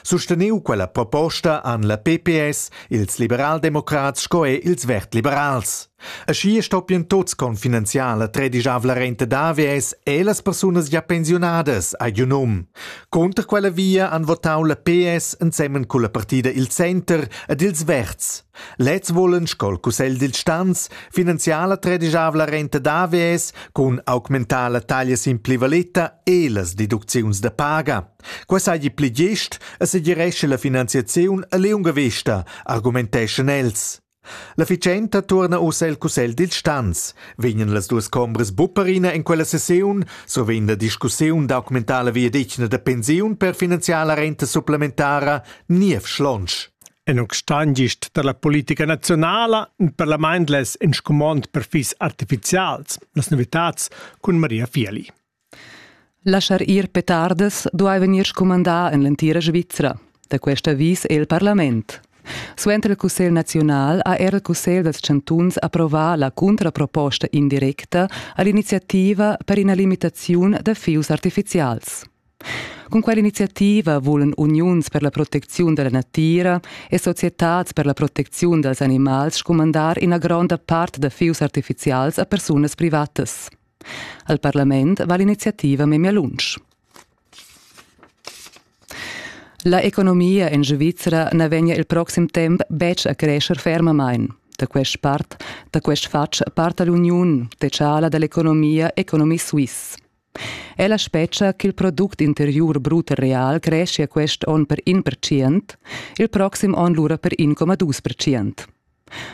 Susteniu quella proposta han la PPS, ils liberaldemocrats sco er ils vertliberals. Aschia stoppien tuts con finanziala tredigiavla renta d'AVS e las persunas ja pensiunadas a giu num. Conter quella via han votau la PS ensemen culla partida il Center ed ils Verts. Lez volen scol Cussegl dil Stanz finanziala tredigiavla renta d'AVS cun augmentar la taglia sin plivaleta e las deducziuns da paga. Quai seigi pli gest e segirescha la finanziaziun e liunga vesta, argumenteschan els. L'efficienta tuorna ussa el cussegl dil stans. Vegnan las duas combras bupperina in quella sessiun, so vegn la discussiun documentala viadetgna da pensiun per finanziar la renta supplementara niev schlonsch. En un stangist per la politica nazionala e per la mindless in scumond per fis artificials, las novitads cun Maria Fieli. Laschar ir petardas duai vegnir scumandà en l'entira Svizra. Da quest avis è il parlament. Suenter il Cussegl naziunal ha era il Cussegl dals chantuns approvà la cuntraproposta indirecta a l'iniziativa per ina limitaziun da fius artifizials. Cun quell'iniziativa vulan uniuns per la protecziun da la natira e societads per la protecziun dals animals scumandar ina gronda part da fius artifizials a persunas privatas. Al parlament va l'iniziativa memia lunsch. La economia en Svizra na vegnia il proxim temp betg a crescer fermamain. Da quest part, da quest fatg parta l'uniun techala dall'economia Economy Suisse. Ella spetga ch'il product interiur brut real creschia quest onn per 1%, il proxim onn lura per 1,2%.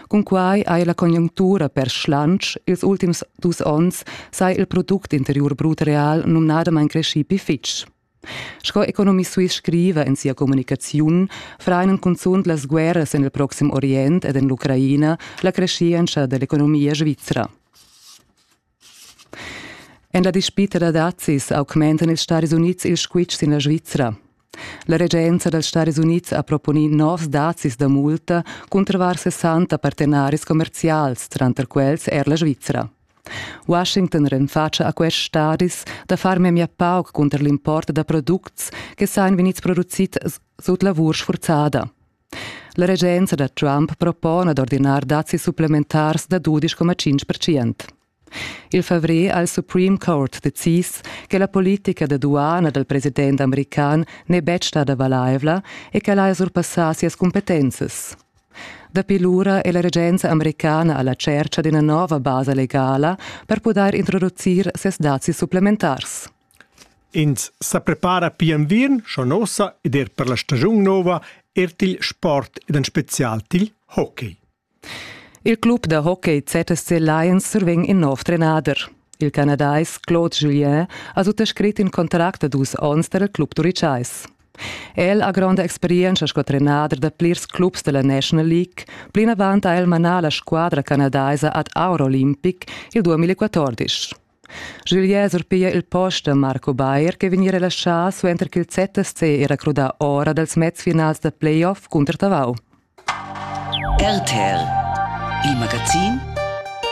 Cunquai ha la conjunctura per schlantsch ils ultims dus onns sai il product interiur brut real numnadamain creschì pli fitg. Sco Economie Suisse scriva en sia communicaziun, frainen cunzunt las guerras en il Proxim Orient ed en l'Ucraina la creschientscha da l'economia svizra. En la dispita da dazis augmentan ils Stadis Unids il squitsch sin la Svizra. La regenza dals Stadis Unids ha proponì novs dazis da multa cunter 60 partenaris commerzials, tranter quels er la Svizra. Washington renfatscha a quests stadis da far memia pauc cunter l'import da products che sain vegnids produzids sut lavur sfurzada. La regenza da Trump propona d'ordinar dazis supplementars da dudisch coma tschintg percent. Il favrer ha il Supreme Court decis che la politica da duana dal president american n'è betg stada valaivla e ch'el haja surpassà sias cumpetenzas. Dapi lura è la regenza americana a la tschercha d'ina nova basa legala per pudair introducir ses dazis supplementars. Ins sa prepara pia enviern schon ussa ed er per la stagiun nova er til sport ed en spezial til hockey. Il club da hockey ZSC Lions survegn in nov trenader. Il canadais Claude Julien ha suttascrit in contract da dus onns per il club turitschais. El ha gronda experienza sco trenader da plirs clubs della National League. Plinavant ha el manà la squadra canadaisa ad Eurolympic il 2014. Julier surpiglia il post da Marco Bayer che vegni relaschà suenter ch'il ZSC era crudà ora dals mezfinals da playoff cunter Tavau. RTL, il magazin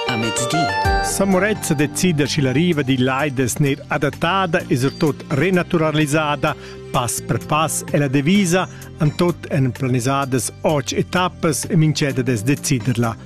a mezdi. Samurezza decida schi la riva di l'Aides ner adattada e surtot renaturalisada pass per pass e la devisa an tot en planisadas och etappas e minceda des deciderla.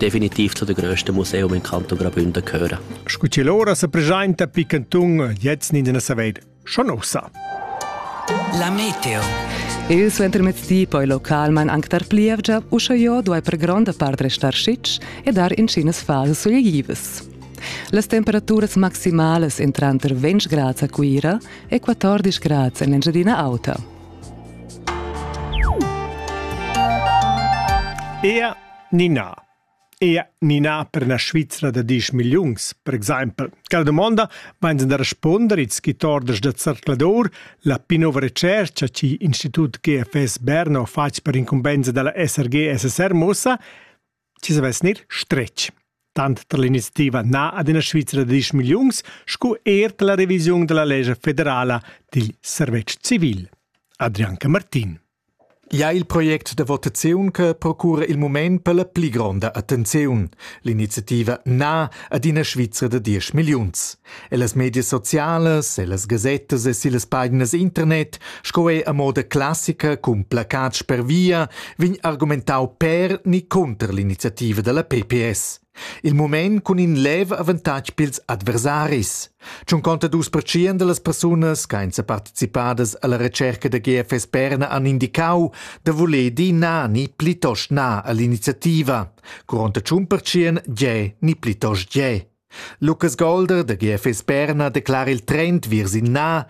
definitiv zu der größte Museum in Canton Graubünden gehören. Scu til ora se presenta pi cantun jetzt in den Saveid. Schon ussa. La Meteo. Il suentermezdi poi localmain anc dar plievgia, usche jo duai per gronda part restar sitg e dar incinas fals sugliivas. Las temperaturas maximalas in tranter 20 grads a Cuira e 14 grads en Engiadina Auta. Ea Nina. Ea Nina per na Svizra da disch milliuns, per exempel. Quella domanda vains da responder ils schitordas da Zercladur, la pi nova recercha chi Institut GFS Berna ha fatg per incumbenza della SRG-SSR mussa, chi savess gnir stretg. Tant tar l'iniziativa Na ad una Svizra da disch milliuns sco er tar la revisiun della legge federala dil servetsch civil. Adrianca Martin. Gia il project da votaziun che procura il mument per la pli gronda attenziun. L'iniziativa Na ad ina Svizra da diesch milliuns. Ellas medias socialas, ellas gasettas e sillas paginas internet sco er a moda classica cun placats per via vegn argumentau per ni conter l'iniziativa dalla PPS. Il mument cun in lev avantatg pils adversaris. Tschunconta dus pertschien dallas persunas ch'ein separticipadas alla retscherca da GFS Berna han indicau da voler dir na ni plitost na all'iniziativa. Curonta tschun pertschien gie ni plitost gie. Lukas Golder da GFS Berna declara il trend viers in na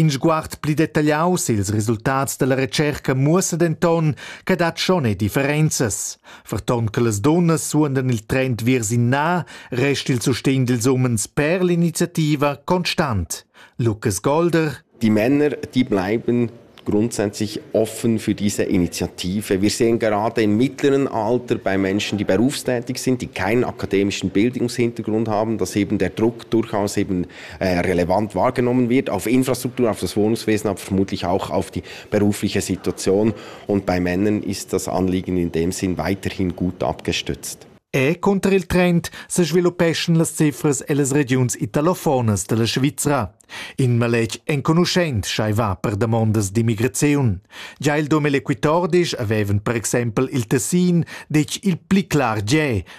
In sguard pli detagliau sils resultats dalla retscherca muossa denton che dat schon ei differenzas. Ferton che las dunnas suondan il trend viers in na, resta il sustegn dils umens per l'iniziativa constant. Lukas Golder Die Männer, die bleiben grundsätzlich offen für diese Initiative. Wir sehen gerade im mittleren Alter bei Menschen, die berufstätig sind, die keinen akademischen Bildungshintergrund haben, dass eben der Druck durchaus eben äh, relevant wahrgenommen wird, auf Infrastruktur, auf das Wohnungswesen, aber vermutlich auch auf die berufliche Situation. Und bei Männern ist das Anliegen in dem Sinn weiterhin gut abgestützt. E contra il trend se sviluppeschan las cifras ellas regiuns italofonas della Svizra. In maletg enconuschent schaiva per damondas d'immigraziun. Già il dom eloquitordisch avevan per exempel il Tessin detg il pli clar Gè,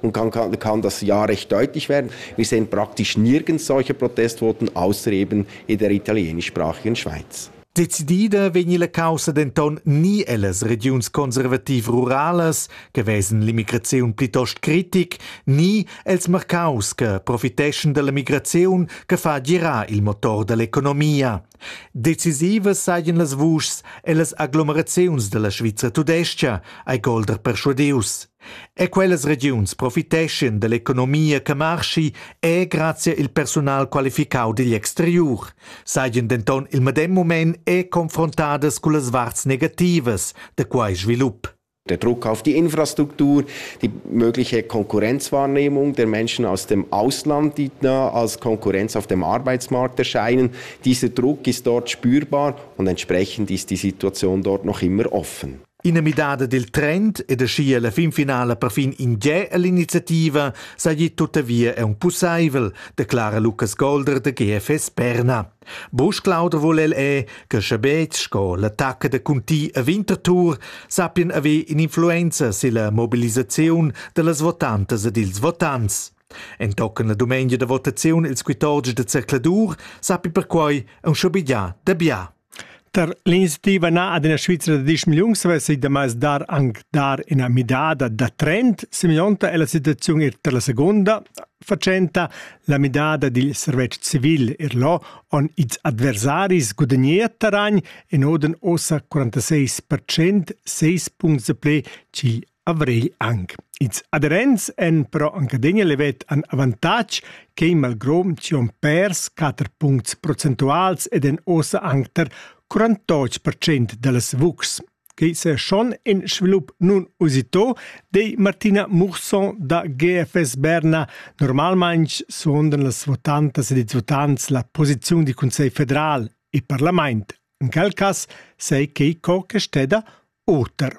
und kann, kann, kann das ja recht deutlich werden. Wir sehen praktisch nirgends solche Protestvoten, außer eben in der italienischsprachigen Schweiz. Decidida vegni la caussa denton ni ellas regiuns conservativ-ruralas, che vesen l'immigraziun plitost critic, ni els marcaus che profiteschen dalla migraziun che fa girar il motor dall'economia. Decisivas sajan las vuschs e las aglomeraziuns da la Svizra tudestga, hai Golder perschuadius. E quellas regiuns profiteschan dall'economia che marschi e grazia il persunal qualificau digl exteriur, sajan denton il medem mument e confrontadas cullas varts negativas da quei svilup. Der Druck auf die Infrastruktur, die mögliche Konkurrenzwahrnehmung der Menschen aus dem Ausland, die da als Konkurrenz auf dem Arbeitsmarkt erscheinen. Dieser Druck ist dort spürbar und entsprechend ist die Situation dort noch immer offen. In der midada del trend e da scia la fin finala perfin in ge all'iniziativa sai tuttavia è un pussaivel, declara Lukas Golder da GFS Berna. Busch Clauder vul el è che sche betg sco l'attacca da Conti a Winterthur sappien haver in'influenza silla mobilisaziun dallas votantas ed ils votants. Entochen la dumengia da votaziun ils quitotgs da zercladur sappi perquei aunc schabegiar da bia. Tar l'iniciativa na ad ina Svizra da diesch milliuns avessi damai dar anc dar ina midada da trend, semeglionta è la situaziun er tar la segunda fatschenta, la midada dil servetsch civil Erlo on its adversaris gudagnea terragn en oden ossa 46% 6 puncts ple ch'il Avrigl anc. Ils aderents èn però anc adina levet an avantatg che in malgrom ci on pers 4 puncts procentuals ed en ossa anc tar 48% da las vucs. Quei se schon in svilup nun usito, dei Martina Murson da GFS Berna. Normalmain suondan las votantas ed ils votants la posiziun di Consiglio federal e Parlament. In quel cas sei quei co che steda oter.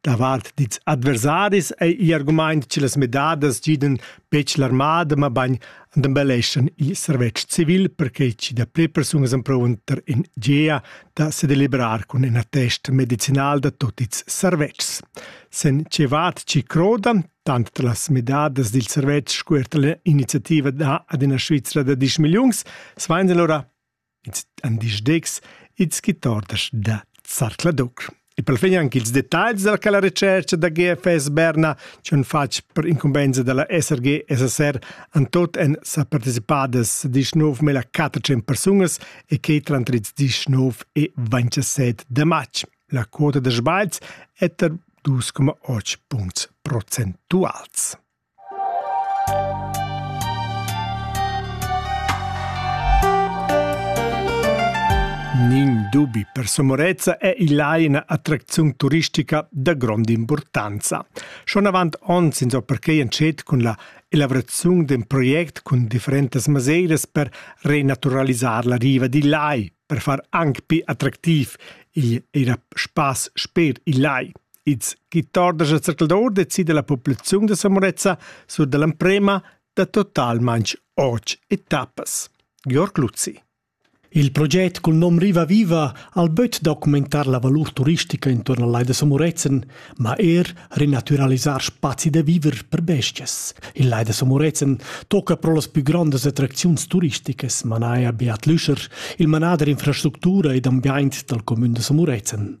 Davart dils adversaris ei igl argument che las midadas gidan betg l'armada, mabain embelleschan il servetsch civil, perquei che dapli persunas emprunter in gia da sedelibrar cun in attest medicinal da tut ils servetschs. Sen Cevat ci croda, tant las midadas dil servetsch sco er iniziativa da ad ina Svizra da 10 milliuns, svein lura Ins han disdetgs ins guitordas da Zarcla Duc. E per fin anche ils detagls della la recerca da GFS Berna c'han fatg per incumbensa della SRG SSR an tot en sa participadas 19.400 persunas e che tra 19 e 27 de matg. La quota de sbagliz è ter 2,8 punts procentuals. Nin dubi, per Somorezza è il lai ina attracziun turistica da grond'impurtanza. Schon avant onns ins ho perquei entschet cun la elaboraziun d'un project cun differentas maseiras per renaturalisar la riva dil lai, per far anc pi attractiv igl era spass sper il lai. Ins guitar da Zercaldaur decida la populaziun da Samorezza sur dall'emprema da totalmain otg etappas. Georg Luzzi. Il project cul nom Riva Viva al böt documentar la valur turistica intorno al Lai da Samurezen, ma er renaturalisar spazi da viver per bestias. Il Lai da Samurezen tocca pro las più grandes attracziuns turisticas, manaia Beat Lüscher, il manader infrastructura ed ambiaint dal comün da Samurezen.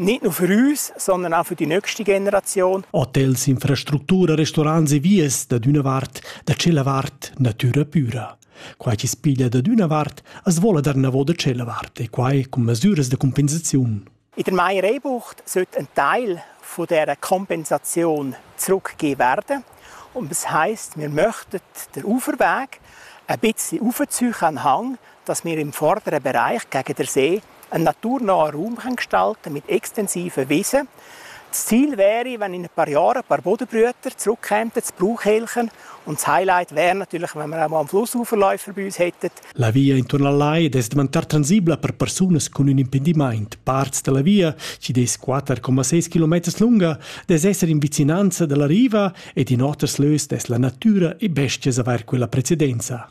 nicht nur für uns, sondern auch für die nächste Generation. Hotels, infrastruttura, restaurants e vies da d'una vart, da cella vart, natura pura. Quai chi spiglia da d'una vart as vola dar navo da cella vart e quai cun masuras da compensaziun. In der Meier-Ebucht sollte ein Teil von dieser Kompensation zurückgegeben werden. Und das heisst, wir möchten den Uferweg ein bisschen aufziehen an den Hang, dass wir im vorderen Bereich gegen den See En natur nova Raumrengstalt mit extensiven Wiesen. Das Ziel wäre, wenn in ein paar Jahren ein paar Bodenbrüter zurückkämen, das Brauchhelchen. Und das Highlight wäre natürlich, wenn wir auch mal am Flussuferläufer bei uns hätten. La via intorno al Lai deve diventar transibla per persunas con un impediment. Parts della via, ci des 4,6 km lunga, des esser in vicinanza della riva e in oters lös des la natura e bestias aver quella precedenza.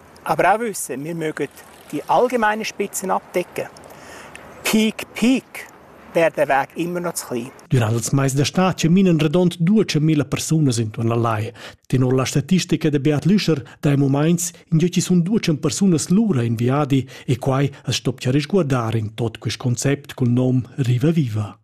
Aber auch wissen, wir mögen die allgemeinen Spitzen abdecken. Kiek Peak wäre der Weg immer noch zu klein. Durant els mais da stad chaminan redond 200.000 persunas intuorn la Lai. Tenor la statistica da Beat Lüscher dai momaints in giö ci sun 200 persunas lura in viadi e quai as stoppia risguardar in tot quist concept cul nom Riva Viva.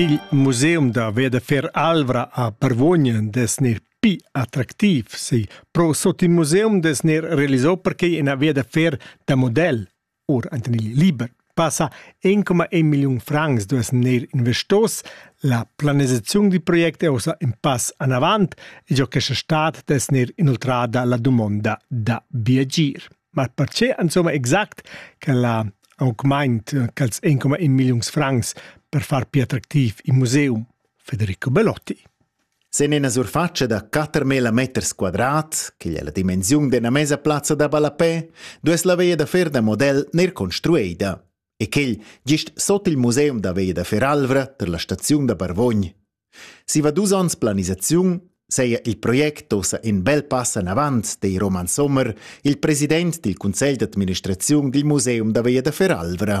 Il museum da Vedefer Alvra a Parvogn des nir pi attractiv si pro sot il museum des nir realisò perquei ina via da fer da model. Or enten il liber passa 1,1 milliun francs duess neir investos. La planisaziun di project è ossa in pass anavant e giò questa stat dess neir inoltrada la dumonda da biagir. Ma perché insomma exact che la augmaint quels 1,1 milliuns francs per far più attractiv il museum? Federico Belotti. Sin ina surfatscha da quatermila meters quadrat, ch'igl è la dimensiun d'ina mesa plazza da ballapè, duess la veia da fer da model neir construeida e quel gist sot il museum da veia da fer Alvra tar la staziun da Barvogn. Siva dus onns planisaziun seia il project ossa in bel pass anavant, dei Roman Sommer, il president dil cunsegl d'administraziun dil museum da veia da fer Alvra.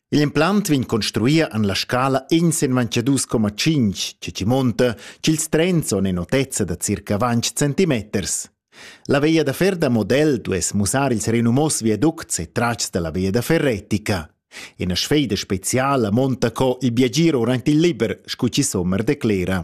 Igl implant vegn construir en la scala ensemanche dus coma tschinch, che chi munta ch'ils trens son in otezza da circa vanch centimeters. La via da fer da model duess mussar ils renumos viaducts e tratgs dalla via da fer retica. Ina sfeida speciala monta co il viagir durant il liber, scu chi sommer declera.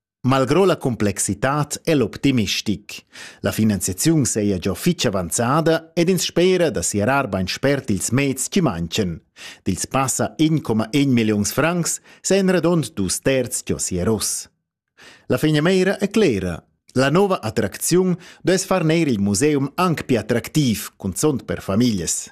Malgrò la complexitad è l'optimistic. La finanziaziun saja già fitg avanzada ed ins spera da siarar bain spert ils meds che mancan. Dils passa 1,1 milliuns francs sajan radond dus terz già siaros. La fegnameira è clera. La nova attracziun duess far neir il museum anc più attractiv, cunzont per famiglias.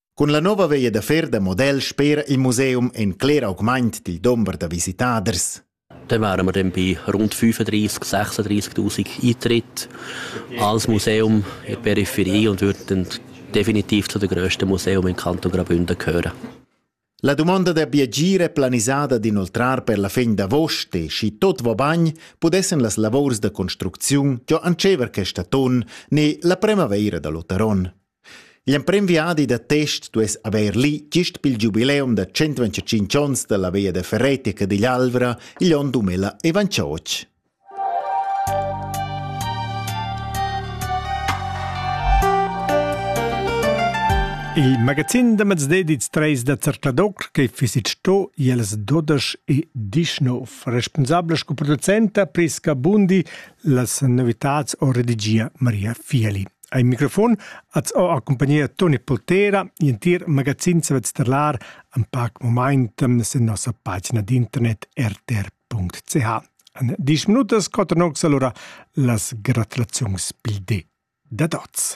Cun la nova veia da fer da model spera il museum en cler augment dil dumber da visitaders. Dann wären wir dann bei rund 35.000, 36.000 Eintritte als Museum in die Peripherie und würden definitiv zu den grössten Museen im Kanton Graubünden gehören. La dumonda da biagir è planisada d'inoltrar per la fin d'avost e schi tot va bagn pudessan las lavors da construcziun giò antschever questa ton ne la primavaira da l'Otaron. L'emprim viadi da test duess avair lì gist pel giubileum da 125 ons da la via da Ferretti a Cadiglialvra igl on 2028. Il magazin da mezdi dils treis da Zercladoc che fisit sto iels dodesch e dischnov, responsabla sco producenta Prisca Bundi las novitats o redigia Maria Fieli. Ai microfon az ho accompagnia Toni Poltera, entir magazin savet sterlar am pac moment sen nossa pagina d'internet rtr.ch. .ch. En 10 minutas coten ox alura las gratulaziuns pil di da tots.